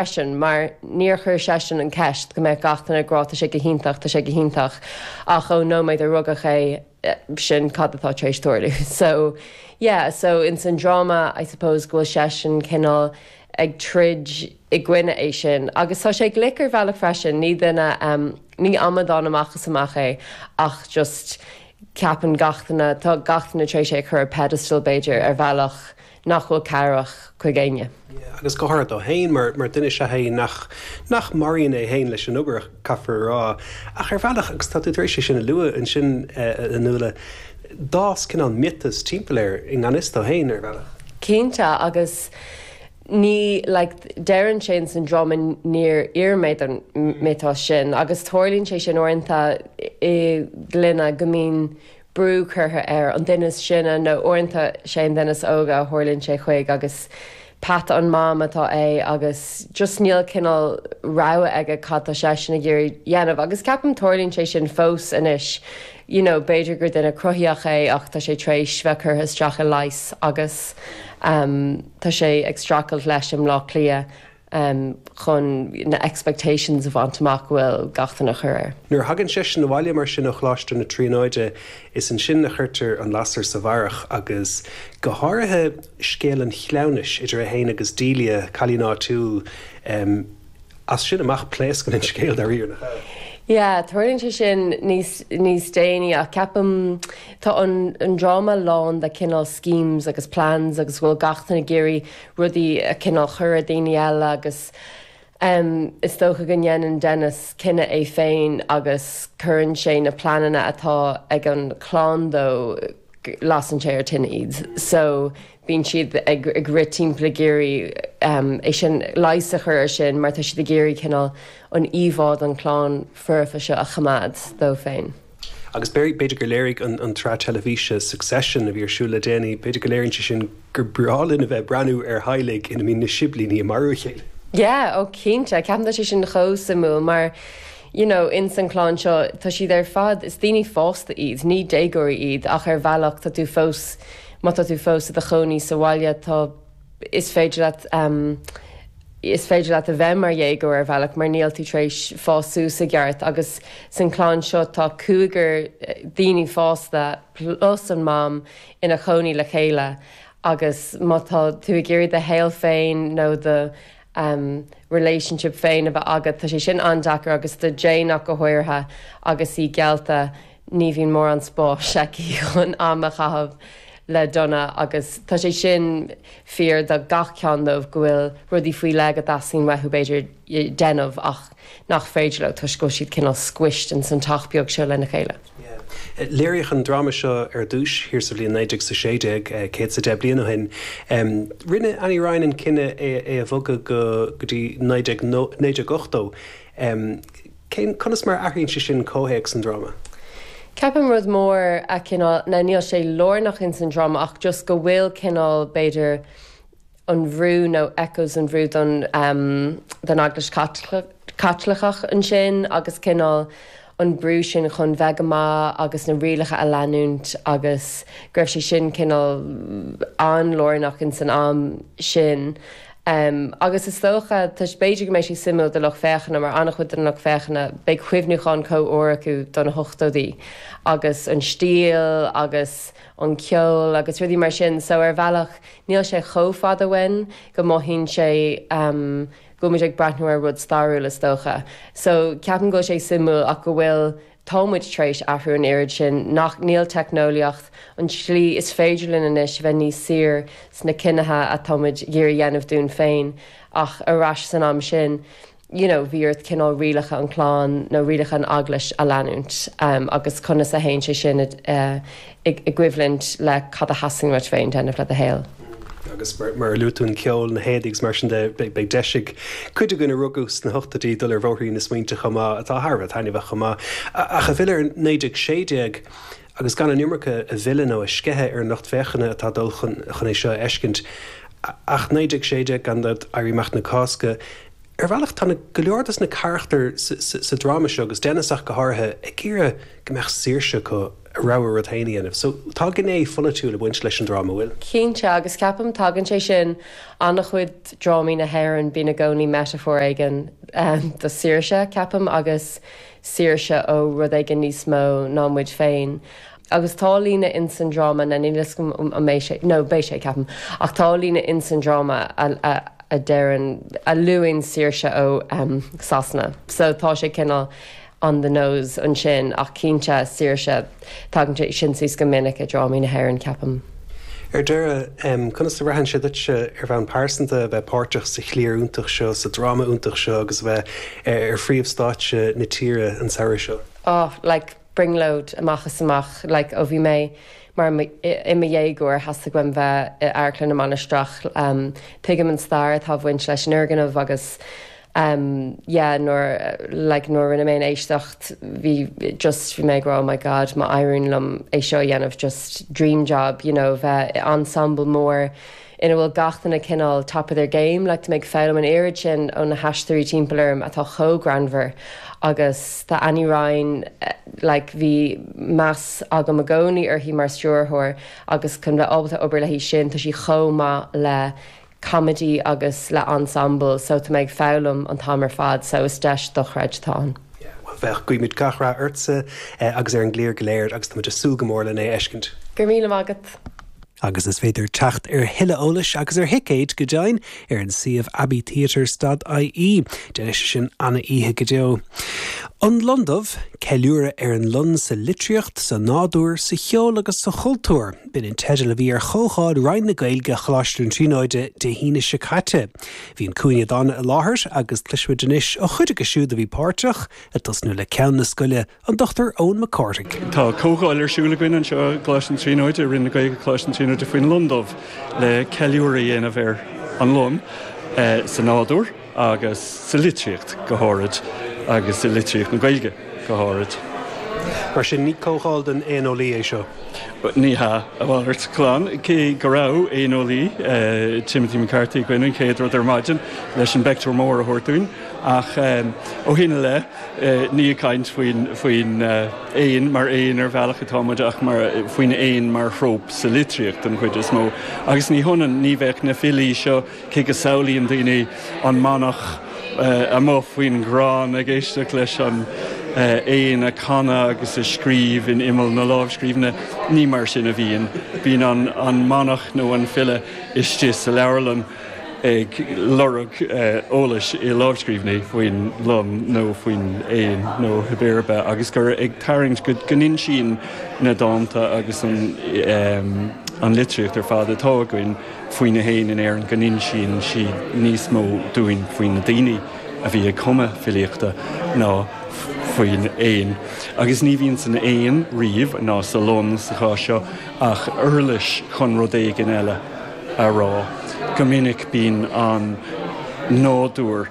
freisin, mar níor chuir seisean an cheist go mbeadh gach duine ag rá tá sé go hiontach, tá sé go hiontach, ach ón nóiméad a rugadh é, sin cad atá tar éis tarlú. So, yeah, so ins an dráma, I suppose, go bhfuil seisean cineál ag troid i gcoinne é sin. Agus tá sé glic ar bhealach freisin, ní duine, ní amadán amach is amach é ach just ceapann gach duine, tá gach duine tar éis é a chur ar pedestal b'fhéidir, ar bhealach. nach bhfuil cabhrach chuig éinne. agus go háirid dó féin, mar mar duine is ea é nach nach maraíonn é féin leis an obair, caithfear a rá. Ach ar bhealach, agus tá tú tar éis é sin a lua ansin, a Nuala, d'fhás cineál miotas timpeall air i ngan fhios dó féin, ar bhealach. Cinnte, agus ní, like, deireann sé in san dráma níor iarr mé don mhiotas sin, agus tarlaíonn sé sin uaireanta i gclainne go mbíonn brú curtha ar an duine is sine, nó uaireanta is é an duine is óige a tharlaíonn sé chuig agus peata an Mham atá é agus just níl cineál rogha aige cad tá seisean ag iarraidh dhéanamh agus ceapaim tarlaíonn sé sin fós anois you know b'fhéidir gur duine cruthaíoch é ach tá sé tar éis bheith curtha isteach i leigheas agus tá sé ag streachailt leis i mBláth Cliath. um chun na expectations a bhaint amach go bhfuil gach duine a chur air. Nuair a thagann seisean abhaile mar sin ó Choláiste na Tríonóide, is ansin a chuirtear an lasair sa bharrach agus go háirithe scéal an chleamhnais idir é féin agus Delia, cailín áitiúil. um As sin amach pléascann an scéal, dáiríre, nach ea? Yeah, tarlaíonn sé sin níos níos déanaí ach ceapaim tá an an dráma lán de cineál schemes agus plans agus go bhfuil gach duine ag iarraidh rudaí a cineál chur ar daoine eile agus is dócha go ndéanann Dennis cinneadh é féin agus cuireann sé na pleananna atá ag an chlann dó, lasann sé ar tine iad so bíonn siad ag rith timpeall ag iarraidh é sin, leigheas a chur ar sin mar tá siad ag iarraidh cineál an íomhá don chlann foirfe seo a choimeád dóibh féin. Agus b'fhéidir gur léirigh an tsraith teilifíse Succession a bhí ar siúl le déanaí, b'fhéidir go léiríonn sé sin gur breá linn a bheith ag breathnú ar theaghlaigh ina mbíonn na siblíní ag marú a chéile. Yeah, oh cinnte, ceapaim tá sé sin chomh suimiúil mar you know in san clann seo tá siad ar fad, is daoine fásta iad, ní déagóirí iad ach ar bhealach tá tú fós má tá tú fós i do chónaí sa bhaile tá is féidir leat is féidir leat a bheith mar dhéagóir ar bhealach mar níl tú tar éis fás suas i gceart agus san clann seo tá cúigear daoine fásta plus an mam ina chónaí le chéile agus má tá tú ag iarraidh do shaol féin nó do relationship féin a bheith agat tá sé sin an-deacair agus do Jane ach go háirithe agus í geallta ní bhíonn mórán spáis aici chun am a chaitheamh le Donna agus tá sé sin fíor do gach ceann díobh, go bhfuil rudaí faoi leith go dteastaíonn uathu, b'fhéidir, déanamh ach nach féidir leo toisc go bhfuil siad cineál squished ins an teach beag seo lena chéile. Léiríodh an dráma seo ar dtúis thiar sa bhliain 1916, céad is a deich bliain ó shin. Rinne Annie Ryan an cinneadh é a bhogadh go dtí 1980. M, Cén, conas mar a athraíonn sé sin comhthéacs an dráma? Ceapaim rud mór a, cineál, now níl sé lárnach ins an dráma ach just go bhfuil cineál b'fhéidir an bhrú nó echoes an bhrú don, don Eaglais Chaitliceach ansin agus cineál an brú sin chun bheith go maith agus na rialacha a leanúint agus go raibh sé sin cineál an-lárnach in san am sin agus is dócha, toisc b'fhéidir go mbeidh sé suimiúil do lucht féachana mar an-chuid den lucht féachana, beidh cuimhniúchán chomh úr acu do na hochtóidí agus an stíl agus an ceol agus rudaí mar sin so ar bhealach níl sé chomh fada uainn go mothaíonn sé go bhfuil muid ag breathnú ar rud stairiúil is dócha. So, ceapaim go bhfuil sé suimiúil ach go bhfuil, tá muid tar éis athrú an oiread sin nach, níl teicneolaíocht an tslí is féidir linn anois bheith níos saor sna cinntí atá muid ag iarraidh dhéanamh dúinn féin ach ar ais san am sin you know bhí ort cineál rialacha an clann nó rialacha an eaglais a leanúint agus conas a théann sé sin i i gcoimhlint le cad a theastaíonn uait féin déanamh le do shaol. Agus mar a luaigh tú an ceol, na héadaí agus mar sin de, beidh deis ag cuid againn a rugadh sna hochtóidí dul ar bhóithrín na smaointe chomh maith, atá thar a bheith taitneamhach chomh maith. Ach ag filleadh ar 1916 agus gan an iomarca a mhilleadh nó a sceitheadh ar an lucht féachana atá ag dul chun é seo a fheiscint ach 1916, gan dabht, Éirí Amach na Cásca, ar bhealach tá go leor dos na carachtair sa dráma seo agus Dennis ach go háirithe, ag iarraidh go mbeadh saoirse acu. rogha rud féin a dhéanamh. So tá gné pholaitiúil ag baint leis an dráma, bhfuil? Cinnte, agus ceapaim tagann sé sin in ana-chuid drámaí na hÉireann, bíonn i gcónaí metaphor éigin do saoirse, ceapaim, agus saoirse ó rud éigin níos mó ná muid féin. Agus tá líne in san dráma, now níl 'fhios agam an mbeidh sé, no, beidh sé ceapaim, ach tá líne in san dráma a deireann, a luann saoirse ó Sasana, so tá sé cineál, on the nose ansin, ach cinnte, saoirse. Tagann sé sin suas go minic i drámaí na hÉireann, ceapaim. Ar deireadh, conas a bhraitheann sé duitse, ar bhonn pearsanta, a bheith páirteach sa chliar iontach seo, sa dráma iontach seo agus a bheith ar phríomhstáitse na tíre an samhradh seo? Oh, like, brionglóid amach is amach. Like, ó bhí mé mar, i mo dhéagóir, theastaigh uaim bheith i Amharclann na Mainistreach. Tuigim an stair atá ag baint leis an fhoirgneamh agus em yeah nuair like nuair a rinne mé an éisteacht bhí just bhí mé ag rá oh my god má éiríonn liom é seo a dhéanamh just dream job you know bheith i ensemble mór ina bhfuil gach duine cineál top of their game like tá mé ag foghlaim an oiread sin ó na haisteoirí timpeall orm atá chomh greannmhar agus tá Annie Ryan eh, like bhí meas agam i gcónaí uirthi mar stiúrthóir agus chun bheith ábalta obair léi sin tá sí chomh maith le coiméide agus le ensemble so tá mé ag foghlaim an t-am ar fad so is deis dochreidte atá ann. Yeah, well bheadh. Guímid gach rath ortsa agus ar an gcliar go léir agus táimid ag súil go mór lena fheiscint. Go raibh míle maith agat. Agus is féidir teacht ar thuilleadh eolais agus ar thicéid, go deimhin, ar an suíomh Abbey Theatre stad IE. Déanfaidh sé sin ana-oíche go deo. An Lon Dubh, Ceiliúradh ar an Lon sa litríocht, sa nádúr, sa cheol agus sa chultúr. B'in an teideal a bhí ar chomhdháil Roinn na Gaeilge Choláiste na Tríonóide Dé hAoine seo caite. Bhí An Cúinne Dána i láthair agus cloisfimid anois ó chuid acu siúd a bhí páirteach, ag tosnú le Ceann na Scoile, an Dr Eoin Mac Cárthaigh. Tá comhdháil ar siúl againn anseo i gColáiste na Tríonóide, i Roinn na Gaeilge Choláiste na Tríonóide, faoin lon dubh, le ceiliúradh a dhéanamh ar an lon sa nádúr. agus sa litríocht go háirid, agus i litríocht na Gaeilge go háirid. Mar sin, ní comhdháil don éaneolaí é seo. Ní hea, a mhalairt glan, cé go raibh éaneolaí, Timothy McCarthy, againn an chéad rud ar maidin leis an bpeictiúr mór a thabhairt dúinn, ach ó shin i leith, ní ag caint faoin éan mar éan ar bhealach atá muid ach faoin éan mar thróp sa litríocht den chuid is mó. Agus ní hionann, ní bheadh na filí seo, Cé go samhlaíonn daoine an manach amuigh faoin gcrann ag éisteacht leis an éan ag canadh agus ag scríobh in imeall na lámhscríbhinne, ní mar sin a bhíonn. Bíonn an manach nó an file istigh sa leabharlann ag lorg eolais i lámhscríbhinní faoin lon nó faoin éan nó cibé ar bith agus gur ag tarraingt go n-insíonn na dánta agus an litríocht ar fad atá againn faoi na héin in Éirinn go n-insíonn sí níos mó dúinn faoi na daoine a bhí ag cumadh filíochta ná faoin éan. Agus ní bhíonn san éan riamh, ná sa lon sa chás seo, ach uirlis chun rud éigin eile a rá. Go minic bíonn an nádúr.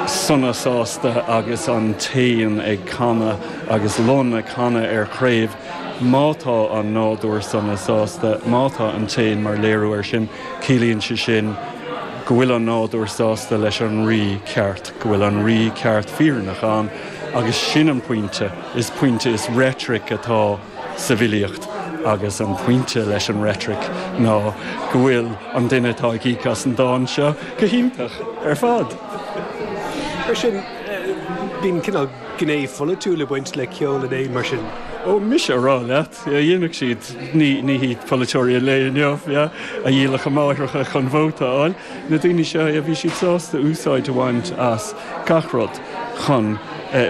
sona sásta agus an t-éan ag canadh agus lon ag canadh ar chraobh. Má tá an nádúr sona sásta, má tá an t-éan mar léiriú air sin, ciallaíonn sé sin go bhfuil an nádúr sásta leis an rí ceart, go bhfuil an rí ceart fírinneach ann agus sin an pointe. Is pointe, is reitric atá. sa bhfilíocht agus an pointe leis an reitric ná go bhfuil an duine atá ag íoc as an dán seo go hiontach ar fad. Mar sin, bíonn cineál gné pholaitiúil ag baint le ceol na n-éan, mar sin? Ó, mise a rá leat, dhéanfadh siad, ní hiad polaiteoirí an lae inniu, a dhíolfadh a máithreacha chun vóta a fháil. Na daoine seo, bhí siad sásta úsáid a bhaint as gach rud chun,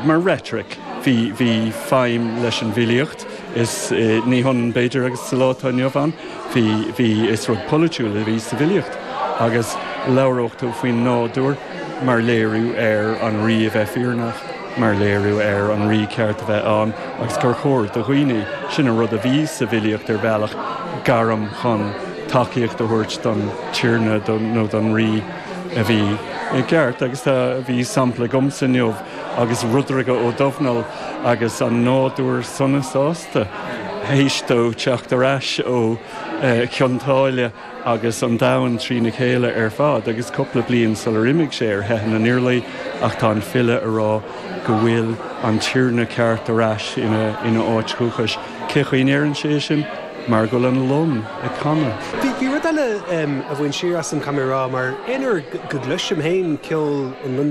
mar rhetoric, bhí, bhí feidhm leis an bhfilíocht, is ní hionann b'fhéidir agus sa lá atá inniu ann, bhí, bhí, is rud polaitiúil a bhí sa bhfilíocht agus labhródh tú faoin nádúr mar léiriú ar an rí a bheith fírinneach, mar léiriú ar an rí ceart a bheith ann agus gur chóir do dhaoine, sin an rud a bhí sa bhfilíocht ar bhealach, gairm chun. tacaíocht a thabhairt don tiarna nó don rí a bhí i gceart agus tá a bhí sampla agamsa inniu agus Rudhraighe Ó Domhnaill agus an nádúr sona sásta théis dó teacht ar ais ó Chionn tSáile agus an domhan trína chéile ar fad agus cúpla bliain sular imigh sé ar theitheadh na nIarlaí ach tá an file a rá go bhfuil an tiarna ceart ar ais ina áit dhúchais. Cé chaoi a ndeireann sé é sin? Mar go bhfuil an lon ag canadh. Bhí rud eile a bhain siar asam, caithfidh mé a rá, mar aon uair go gcloisim féin ceol an lon dubh,